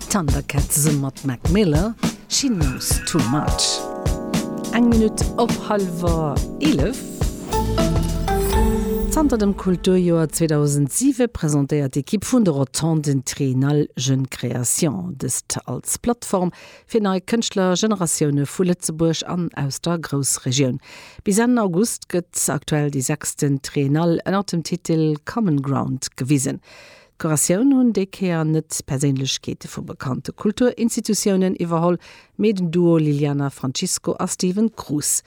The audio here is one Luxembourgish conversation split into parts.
Thundercat zesumme mat Mac Miller, She Knows Too Much. Eng Minutt op hallwer eelef. Zanter dem Kulturjoer 2007 presentéiert d'Ekipp vun de Rotonden Triennale Jeunes Créations dëst als Plattform fir nei Kënschtlergeneratioune vu Lëtzebuerg an aus der Groussregioun. Bis Enn August gëtt aktuell déi sechsten Triennale ënnert dem Titel Common Ground gewisen. D'Kuratioun hunn déi Kéier net Perséinlechkeete vu bekannte Kulturinstitutiounen iwwerholl, mee den Duo Liliana Francisco a Steven Cruz,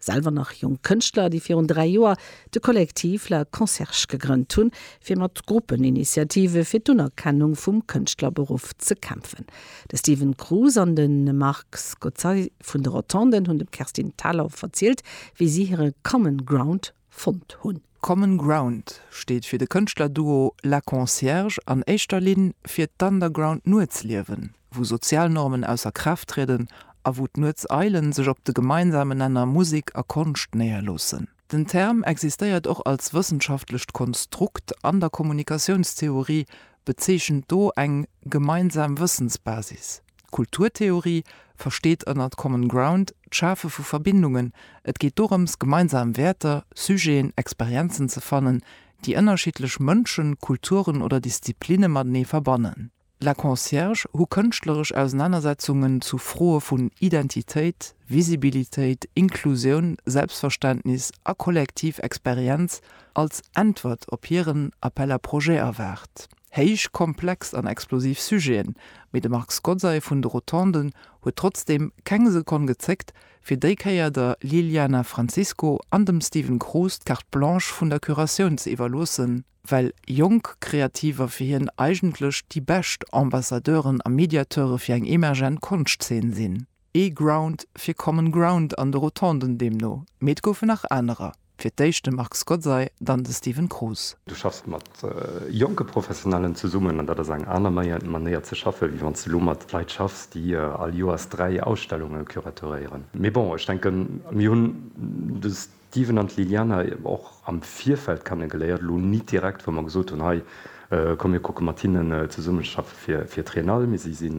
selwer nach jonk Kënschtler, déi virun dräi Joer de Collectif La Concierge gegrënnt hunn, fir mat Gruppeninitiative fir d'Unerkennung vum Kënschtlerberuff ze kämpfen. De Steven Cruz an de Marc Scozzari vun de Rotonden hunn dem Kerstin Thalau verzielt, wéi si hire Common Ground fonnt hunn. Common Ground steet fir de Kënschtlerduo La Concierge an éischter Linn fir d'Underground Nuetsliewen, wou sozial Normen ausser Kraaft trieden a wou d'Nuetseile sech op de gemeinsame Nenner Musek a Konscht néierloossen. Den Term existéiert och als wëssenschaftlecht Konstrukt an der Kommunikatiounstheorie, bezeechent do eng gemeinsam Wëssensbasis. Kulturtheorie versteet ënnert Common Ground d'Schafe vu Verbindungen. Et geet dorëms, gemeinsam Wäerter, Sujeten, Experienzen ze fannen, déi ënnerschiddlech Mënschen, Kulturen oder Disziplinne matenee verbannen. La Concierge hu kënschtleresch Ausenanersetzungen zu Froe vun Identitéit, Visibilitéit, Inklusioun, Selbstverständnis a kollektiv Experienz als Äntwert op hiren Appel à projets erwaart. Héich komplex an explosiv Sujeten, mee de Marc Scozzai vun de Rotonden huet trotzdeem keng Sekonn gezéckt, fir déi Kéier der Liliana Francisco an dem Steven Cruz d'Carte Blanche vun der Curatioun ze iwwerloossen, well jonk Kreativer fir hien eigentlech déi bescht Ambassadeuren a Mediateure fir eng emergent Konschtzeen sinn. Ee Ground fir Common Ground an de Rotonden deemno, mee et goufen nach anerer, fir d'éischt de Marc Skotzay, dann de Steven Kroos. Du schaffs mat jonke Professionellen zesummen an dat ass eng aner Manéier ze schaffen, wéi wann s de elo mat Leit schaffs, déi all Joers dräi Ausstellunge curatoréieren. Mee bon, ech denken, mir hunn de. D'Steven an d'Liliana hu mer och am Virfeld kennegeléiert, elo nit direkt, wou mer gesot hunn, hei komm mir kucke mat hinnen zesummezeschaffe fir d'Triennale, mee si si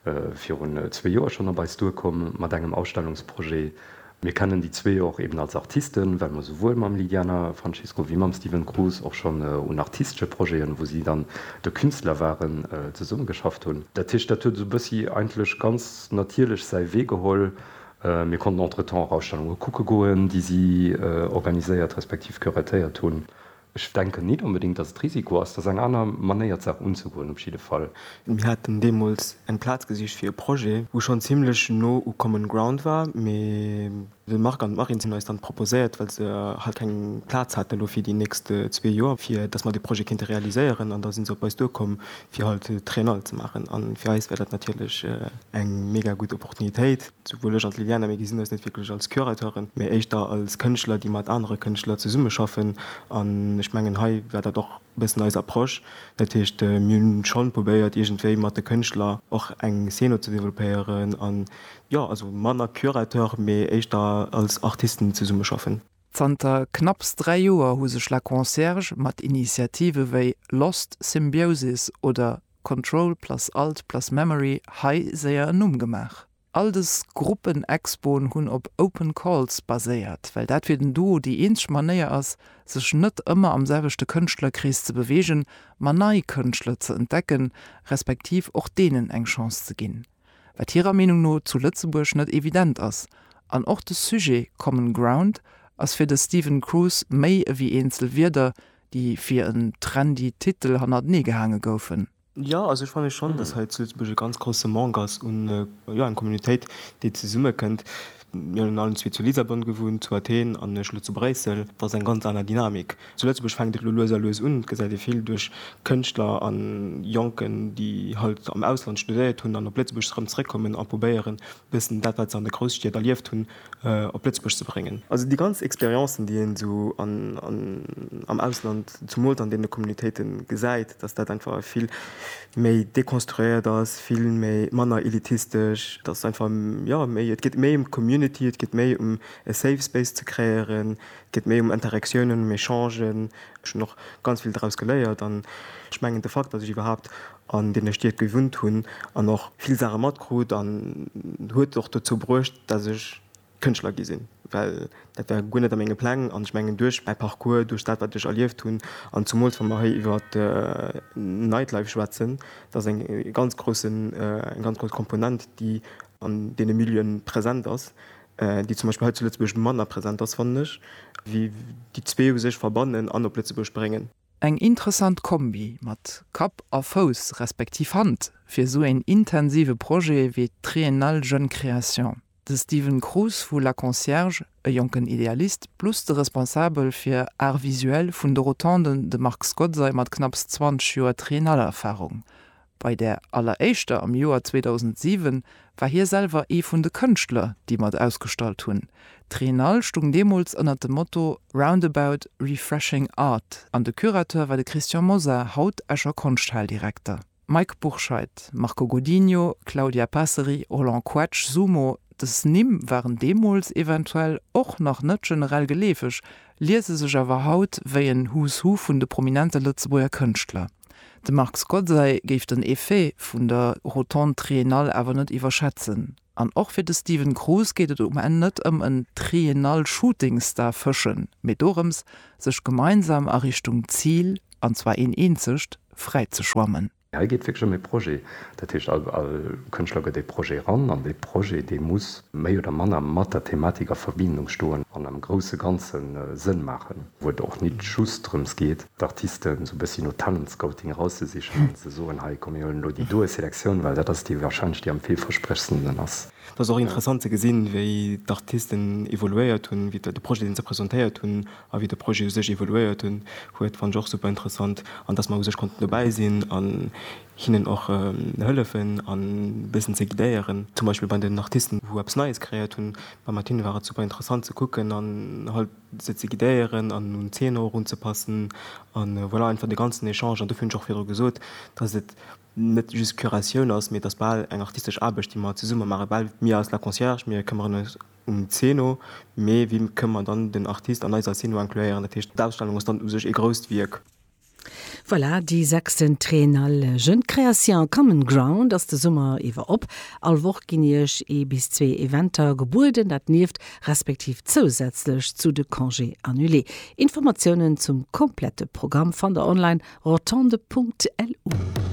virun zwee Joer schonn op eis duerkomm mat engem Ausstellungsprojet. Mir kennen déi zwee och eben als Artisten, well mer souwuel mam Liliana Francisco wéi mam Steven Cruz och schonn un artistesche Projeten, wou si dann de Künstler waren, zesummegeschafft hunn. Dat heescht, dat huet esou e bëssi eigentlech ganz natierlech säi Wee geholl, Mir konnten entretemps och Ausstellunge kucke goen, déi si organiséiert respektiv curatéiert hunn. Ech denken nit onbedéngt, datt et Risiko ass. Dat ass eng aner Manéier, d'Saach unzegoen op jidde Fall. Mir haten deemools eng Plaz gesicht fir e Projet, wou schonn zimmlech no u Common Ground war, mee de Marc an d'Marine hunn eis dann proposéiert, well se halt keng Plaz haten elo fir déi nächst zwee Joer, fir datt mer dee Projet kéinte realiséieren. An da si se op eis duerkomm, fir halt d'Triennale ze maachen an fir eis wär dat natierlech eng mega gutt Opportunitéit, souwuel ech an d'Liliana, mir gesinn eis net wierklech als Curateuren, mee éischter als Kënschtler, déi mat anere Kënschtler zesummeschaffen an ech mengen hei war dat och e bëssen eis Approche. Dat heescht, mir hunn schonn probéiert iergendwéi mat de Kënschtler och eng Szene ze développéieren an jo, also manner Curateur, mee éischter als Artisten zesummeschaffen. Zanter knapps dräi Joer hu sech La Concierge mat Initiative wéi Lost Symbiosis oder Control plus Alt plus Memory hei séier en Numm gemaach. All dës Gruppen-Expoen hunn op Open Calls baséiert, well dat fir den Duo déi eenzeg Manéier ass, sech net ëmmer am selwechte Kënschtlerkrees ze beweegen, ma nei Kënschtler ze entdecken, respektiv och deenen eng Chance ze ginn. wat hirer Meenung no zu Lëtzebuerg net evident ass, an och de Sujet Common Ground ass fir de Stephen Cruz méi ewéi eenzel Wierder, déi fir en trendy Titel hannertenee gehaange goufen. Jo, also ech fanne schonn, datt hei zu Lëtzebuerg e ganz grousse Manque ass un, jo, eng Communautéit, déi zesummekënnt. Mir hunn allen zwee zu Lissabon gewunnt, zu Athen an ech elo zu Bréissel. Dat ass eng ganz aner Dynamik. Zu Lëtzebuerg fänkt et elo lues a lues un, et gesäit ee vill duerch Kënschtler a Jonken, déi halt am Ausland studéiert hunn an op Lëtzebuerg erëm zeréckkommen a probéieren, e bëssen dat, wat se an de Grousstied erlieft hunn, op Lëtzebuerg ze bréngen. Also déi ganz Experiencen, déi een esou am Ausland, zumools an deene Communautéite gesäit, datt dat einfach e vill méi dekonstruéiert ass, vill méi, manner elitistesch, et ass einfach, jo, méi, et geet méi ëm d'Community, et geet méi ëm e safe space ze kreéieren, et geet méi ëm Interaktiounen, ëm Echangen. Ech hunn och ganz vill draus geléiert an ech mengen de Fakt, datt ech iwwerhaapt an deene Stied gewunnt hunn an och vill Saache matkrut, huet och dozou bruecht, datt ech, Kënschtler gi sinn, well dat war guer net a menge Pläng. An ech mengen, duerch mäi Parcours, duerch dat, wat ech erlieft hunn, an zumools wa mer hei iwwer Nightlife schwätzen, dat ass eng ganz groussen, eng ganz grouss Komponent, déi an deene Milieuen present ass, déi zum Beispill hei zu Lëtzebuerg manner present ass, fannen ech, wéi déi zwee u sech verbannen an op Lëtzebuerg bréngen. Eng interessant Kombi mat Kapp a Fouss, respektiv Hand, fir esou een intensive Projet wéi d'Triennale Jeunes Créations. De Steven Cruz vu La Concierge, e jonken Idealist plus de Responsabel fir Art Visuel vun de Rotonden, de Marc Skodzai mat knapps 20 Joer Triennale-Erfarung. Bei där alleréischter am Joer 2007 war hie selwer ee vun de Kënschtler, déi mat ausgestallt hunn. D'Triennale stung deemools ënnert dem Motto Roundabout, Refreshing Art an de Curateur war de Christian Mosar, haut Escher Konschthal-Direkter. Mike Bourscheid, Marco Godinho, Claudia Passeri, Roland Koetsch, Sumo, dës Nimm waren deemools eventuell och nach net generell geleefeg, liese sech awer haut wéi en Who's Who vun de prominente Lëtzebuerger Kënschtler. De Marc Scozzay géif den Effet vun der Rotonde Triennale awer net iwwerschätzen. An och fir de Steven Cruz geet et um Enn net ëm en Triennal Shooting Star fëschen, mee dorëms, sech gemeinsam a Richtung Zil, an zwar een eenzegt, fräi ze schwammen. Hei geet et wierklech ëm ee Projet. Dat heescht, all Kënschtler gëtt ee Projet eran, an dee Projet, dee muss méi oder manner mat der Thematik a Verbindung stoen an am grousse Ganze Sënn maachen, wou et och nit just drëms geet, d'Artisten sou bëssi no Talentscouting erauszesichen an ze soen, hei komm mir huelen elo déi doe Selektioun, well dat ass déi wahrscheinlech déi am villversprechendsten ass. Et ass och interessant ze gesinn, wéi d'Artisten evoluéiert hunn, wéi de Projet deen se presentéiert hunn a wéi de Projet u sech evoluéiert hunn huet, fannen ech och super interessant an datt mer u sech konnten dobäi sinn an hinnen och hëllefen an e bëssen ze guidéieren, zum Beispill bei den Artisten wou eppes Neies kreéiert hunn, mat hinne war et super interessant ze kucken an halt. se ze guidéieren an un d'Zeener och unzepassen a voilà, einfach de ganzen Echange. An dofir hunn ech och virdru gesot, dass et net just d'Curatioun ass, mee et ass bal eng artistesch Aarbecht, déi mer zesumme maachen. Bal mir als La Concierge, mir këmmeren eis um Zeno, mee wie kënn mer dann den Artist an eiser Zeno incluéieren? Dat heescht, d'Ausstellung ass dann u sech ee grousst Wierk. Voilà, déi sechsten Triennale Jeunes Créations Common Ground ass de Summer iwwer op. All Woch ginn Iech ee bis zwee Eventer gebueden, dat nieft respektiv zousätzlech zu de Congés annulés. Informatiounen zum komplette Programm fannt der online, rotonde.lu.